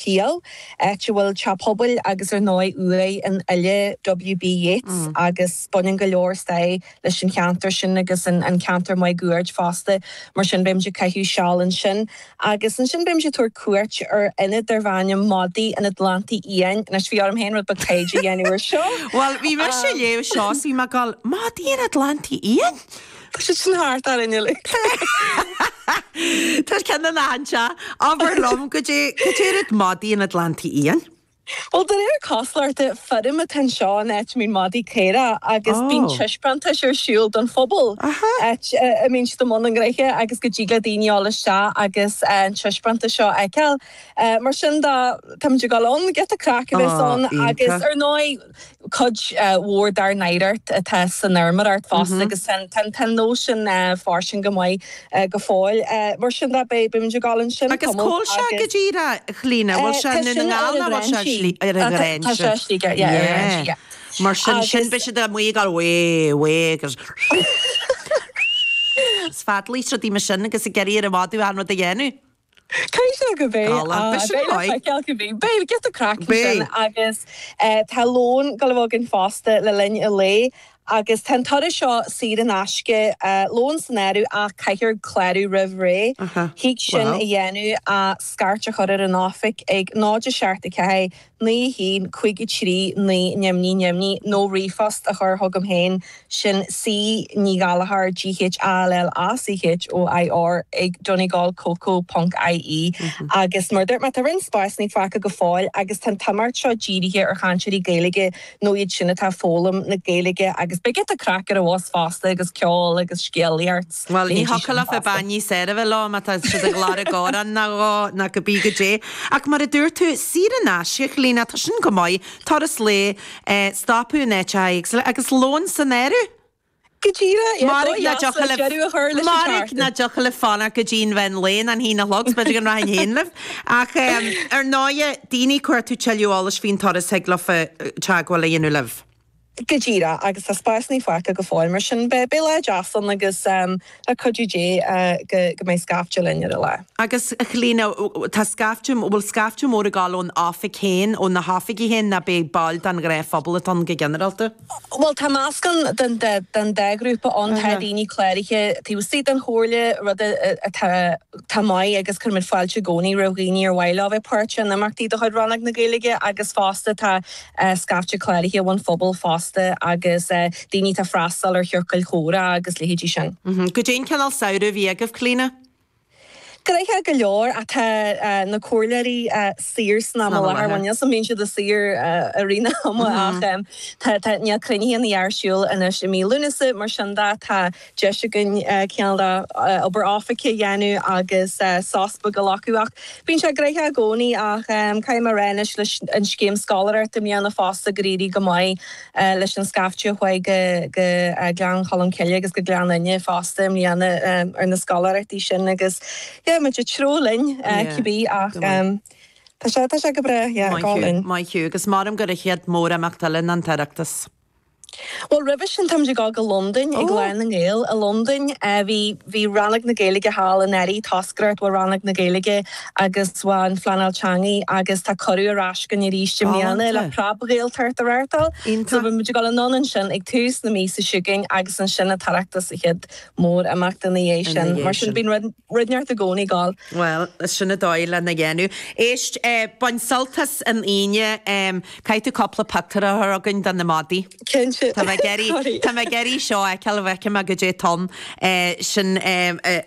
Peel, áit a bhfuil teach pobail agus ar ndóigh uaigh an fhile W.B. Yeats agus baineann go leor stair leis an cheantar sin agus an ceantar máguaird fosta mar sin beimid ag caitheamh seal ansin agus ansin beimid ag tabhairt cuairt ar ionad darb ainm Madaí an Atlantaigh Fhiáin anois bhí orm féin rud beag taighde a dhéanamh ar seo! Bhuel bhí mise ag léamh seo is bhí mé ag gabháil Madaí an Atlantaigh Fhiáin? Tá siad sin thart orainn uilig. Tá siad ceann de na anseo. Abair liom, goidé rud iad madaí an Atlantaigh Fhiáin? Bhuel, de réir cosúlachta feirm atá anseo in áit a mbíonn madaí caorach agus bíonn taispeántais ar siúl don phobal áit a mbíonn siad i mbun a ngnoithe agus go dtig le daoine a dhul isteach agus an taispeántas seo a fheiceáil. Mar sin de, táimid ag dul ann, giota craic a bheas ann agus ar ndóigh, Cuid mhór dár n-oidhreacht atá san fheirmeoireacht fosta agus tá an nós sin fairsing go maith go fóill. Mar sin de, beidh muid ag dul ansin, Cumann, agus. Agus cá bhfuil sé go díreach, a Chlíona? Bhfuil sé i nDún na nGall nó bhfuil sé ar an Ghráinseach? Tá sé ar Shligigh, ar an Ghráinseach. Mar sin sin, beidh siad amuigh ag gabháil, Away, away agus. Is feadaíl is rudaí mar sin agus ag iarraidh ar an mhadadh an rud a dhéanamh. Caithfidh sé go mbeidh. Tá lán piseanna Beidh le uaidh. feiceáil cad a bhí. Beidh, giota craic ansin. Beidh. Agus tá lón ag gabháil a bheith againn fosta le linn an lae agus tá an turas seo saor in aisce, lón san áireamh ach caithfear clárú roimh ré. Thig sin a dhéanamh ach scairt a chur ar an oifig ag 0 7 4 9 1 5 3 9 Neamhní Neamhní nó ríomhphost a chur chugam féin, sin C Ní Ghallachóir G H A L L A C H O I R ag donegal coco ponc IE Agus mar a dúirt mé, tá roinnt spásannaí fágtha go fóill agus tá an t-imeacht seo dírithe ar chainteoirí Gaeilge nó iad sin atá ag foghlaim na Gaeilge agus beidh giota craic ar an bhus fosta agus ceol agus scéalaíocht. Bhuel, ní thiocfadh leofa bean níos fearr a bheith leo má tá siad ag lorg amhrán nó dhó, ná cibé goidé. Ach mar a dúirt tú, saor in aisce, a Chlíona, tá sin go maith, turas lae, stopadh in áiteacha éagsúla, agus lón san áireamh! Go díreach, dóigh dheas le deireadh a chur leis an chartadh. Mairg nach dtiocfadh libh fanacht go dtí an mheán lae, an haon a chlog is, b'fhéidir go rachainn féin libh. Ach ar ndóigh, daoine, ag cuartú tuilleadh eolais faoin turas thig leofa teagmháil a dhéanamh libh. Go díreach, agus tá spásannaí fágtha go fóill, mar sin beidh lá deas ann agus le cuidiú Dé go mbeidh scaifte linn ar an lá. Agus Chlíona, tá scaifte, bhfuil scaifte mór ag gabháil ón oifig féin, ó na hoifigí féin ná beidh baill den ghnáthphobal atá ann go ginearálta? Bhuel tá meascán den dá ghrúpa ann, tá daoine cláraithe taobh istigh den Chomhairle, rud atá maith agus cuirimid fáilte i gcónaí roimh dhaoine ar mhaith leo bheith páirteach in imeachtaí de chuid Rannóg na Gaeilge agus fosta tá scaifte cláraithe ón phobal fosta agus daoine atá ag freastal ar chiorcail chomhrá agus leithéidí sin. Goidé an cineál samhradh a bhí agaibh, Clíodhna? Gnoitheach go leor ach tá na comhairleoirí saor san am i láthair, bhuel níl 's 'am bíonn siad saor i rith an ama ach tá níl cruinnithe ná a dhath ar siúl anois i mí Lúnasa mar sin de tá deis againn cineál de obair oifige a dhéanamh agus sos beag a ghlacadh. Ach bíonn sé gnoitheach i gcónaí. Ach caithfidh mé a rá anois leis an scéim scoláireachta i mbliana fosta gur éirigh go maith leis an scaifte a chuaigh go Gleann Cholm Cille agus go Gleann Fhinne fosta i mbliana ar na scoláireachtaí sin agus yeah muid ag treabhadh linn cibé ach tá sé go breá yeah gá linn. Maith thú, maith thú. Agus maram gur an chéad mhórimeacht eile ná an tOireachtas. Bhuel roimhe sin táimid ag dul go Londain, ag Lá na nGael i Londain. Bhí, bhí Rannóg na Gaeilge thall anuraidh, toscaireacht ó Rannóg na Gaeilge agus ón Phleanáil Teanga agus tá cuireadh ar ais againn arís i mbliana le Preab-Ghaeltacht a reáchtáil. So beidh muid ag dul anonn ansin ag tús na míosa chugainn agus ansin an tOireachtas, an chéad mhórimeacht ina dhiaidh sin. Mar sin bíonn rud. Rud inteacht i gcónaí ag dul. Bhuel, sin an dóigh lena dhéanamh. Éist, bain sult as an Aoine. Caithfidh tú cúpla pictiúr a chur chugainn de na madaí. Cinnte. Tá mé ag iarraidh, tá mé ag iarraidh seo a fheiceáil an bhfeicfidh mé goidé atá ann. Sin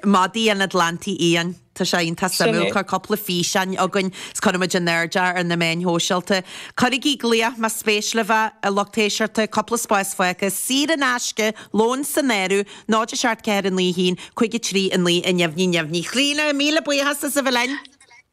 madaí an Atlantaigh Fhiáin. Tá sé iontach suimiúil. Sin é. Cuir cúpla físeán chugainn agus cuirfidh muid in airde é ar na meáin shóisialta. Cuirigí glaoch más spéis libh é, a lucht éisteachta. Cúpla spás fágtha. Saor in aisce. Lón san áireamh. 0 7 4 9 1 5 3 9 0 0. Clíodhna, míle buíochas as a bheith linn.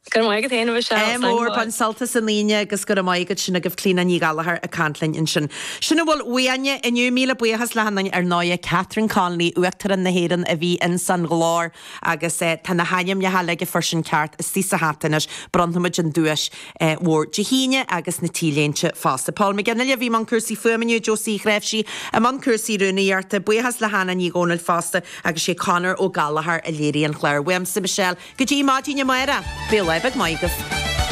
Go raibh maith agat féin a Mhichelle, ádh mór. Bain sult as an Aoine agus go raibh maith agat sin agaibh Clíodhna Ní Ghallchóir ag caint linn ansin. Sin a bhfuil uainne inniu, míle buíochas le hachan duine ar ndóigh, Catherine Connolly, Uachtarán na hÉireann a bhí ins an ghlór agus tá na hainmneacha uilig a fuair sin ceart istigh sa hata anois, bronnfaimid an duais. mhór Dé hAoine agus na T-léinte fosta. Paul McGinley a bhí i mbun cúrsaí fuaime inniu, Josie Ghráifsí i mbun cúrsaí rúnaíochta, buíochas le Hannah Ní Dhomhnaill fosta agus sé Conor Ó Gallchóir a léirigh an clár. Uaimse, Michelle, go dtí maidin amárach, bíodh lá maith agaibh.